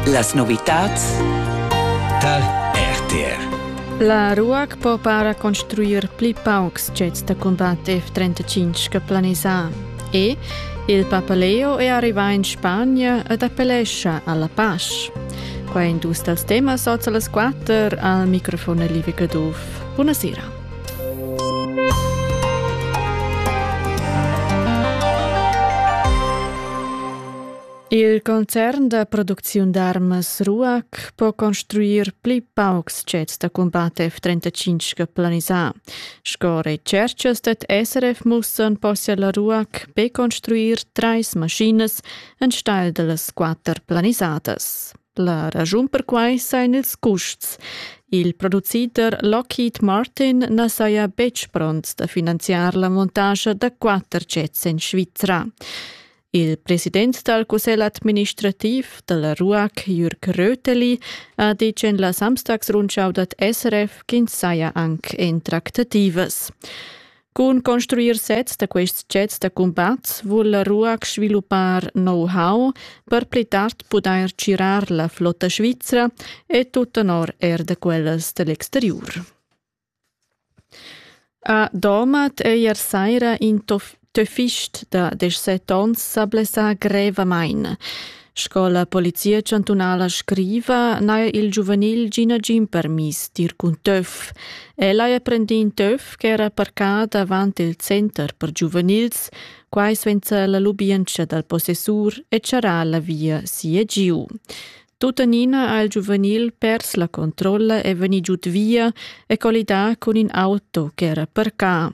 Las novitads tar RTR. La RUAC po para construir pli paucs jets da combat F-35 che planisà e il Papaleo è arrivà in Spagna ed appellescha alla pace. Qua è dus dals temas oz alle 4 al microfon Live Gaduff. Buonasera. Il concern da producziun d'armas Ruac po construir pli paucs sets da combat F-35 planisà. Sco recerchas dad SRF mussan possia la Ruac be construir trais maschinas enstagl da las quatter planisadas. La raschun per quai sain ils custs. Il producider Lockheed Martin na saja betg pront da finanziar la montascha da quatter sets en Svizra. Il president dal cussegl administrativ da la RUAC, Jürg Röteli, ha ditg en la Samstagsrundschau dad SRF ch'ins saja anc en tractativas. Cun construir sezs da quests jets da cumbat vul la RUAC sviluppar know-how per pli tard pudair tgirar la flotta svizra e tut tenor er da quellas da l'exteriur. A Domat eir saira in töfist da deschset ons s'ha blessà grevamaing. Sco la Polizia chantunala scriva, n'haja il giuvenil gì nagin permiss d'ir cun töf. El haja prendì in töf ch'era parcà davant il center per giuvenils, quai sainza la lubientscha dal possessur e charrà la via si e giu. Tuttenina ha il giuvenil pers la controlla e vegni giud via e collidà cun in auto ch'era parcà.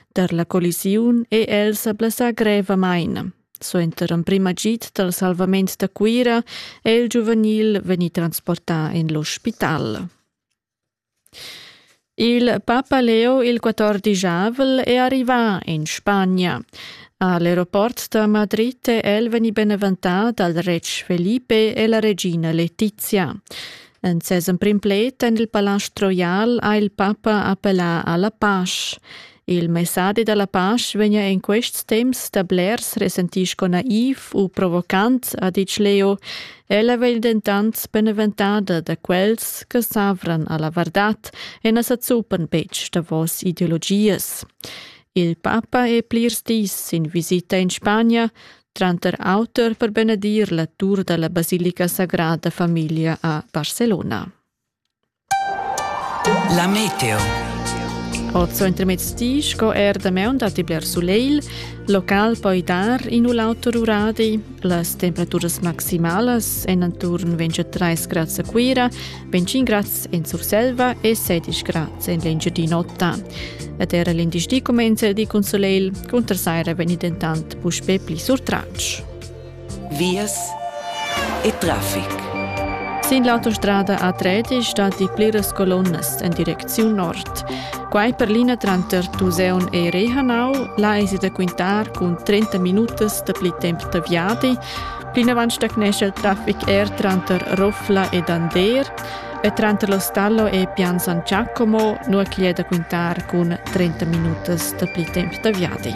Dar la collisiun è el sa blessà grevamain. Suenter emprim agid dal salvament da Cuira è il giuvenil vegni transportà en l'ospital. Il papa Leo il quatordischavvel è arrivà in Spagna. A l'eroport da Madrid è el vegnì beneventà dal retg Felipe e la regina Letizia. En ses emprim pled en il palast roial ha il papa appellà a la pasch. Il messadi dalla pasch vegna en quests temps da blers resentì sco naiv u provocant, ha ditg Leo. Ella vegl dentant beneventada da quels che s'avran alla vardad e na sa zuppan betg davos ideologias. Il papa è plirs dis sin visita in Spagna, tranter auter per benedir la tur dalla basilica sagrada famiglia a Barcelona. La meteo. Ot so intermezzi sco er da meun datti bler sulegl, local poi dar in u l'auter uradi. Las temperaturas maximalas en attorn 23 grads a Cuira, 25 grads en Surselva e 16 grads en l'Engiadin'Ota. Ed era l'indice di comenza di con soleil, con tersaira veni dentant puspè pli surtratg. Vias e traffic. Sin l'autostrada A3 stati pliras colonnas en direcziun nord. Quai per l'ina tranter Tuseun e Rehanau, là esi da quintar cun 30 minutas da pli temp da viadi. Plinavant stagnescha il traffic er tranter Roffla ed Ander e tranter lo Stallo e Pian San Giacomo, nua ch'igl è da quintar cun 30 minutas da pli temp da viadi.